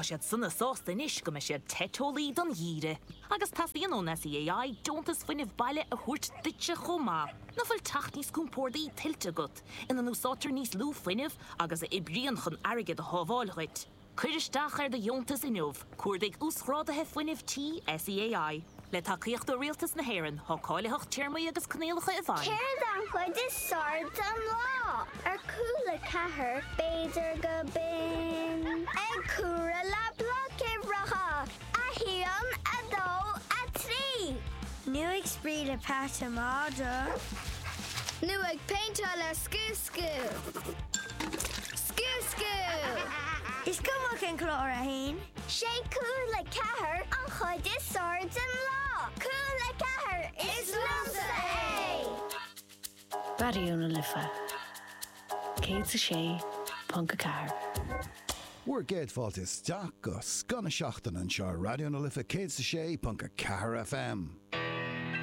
Tá siad sona sásta anois go mbeidh siad te teolaí don gheimhreadh. Agus teastaíonn ón SEAI deontas fuinnimh baile a thabhairt duitse chomh maith. Nach bhfuil teach níos compórdaí tuillte agat, ina n-úsáidtear níos lú fuinnimh agus a oibríonn chun airgead a shábháil dhuit? Cuir isteach ar do dheontas inniu, Cuardaigh Uasghráduithe Fuinnimh Tí SEAI. Le tacaíocht ó Rialtas na hÉireann, tá cáilitheacht téarmaí agus coinníollacha i bhfeidhm. Céard an chuid is fearr den lá ar Cúla Ceathair? B'fhéidir gurb in ag comhaireamh le bloic uimhreacha, a haon, a dó, a trí. Nó ag spraoi le peata mada. Nó ag péinteáil le scuab. Scuab. Scuab, scuab. Is cuma cén clár atá ann, sé Cúla Ceathair an chuid is fearr den lá. Cúla Ceathair, is liomsa é! Raidió na Life 106.4. Bhur gcéad fáilte isteach go scoth na seachtaine anseo ar Raidió na Life 106.4 FM.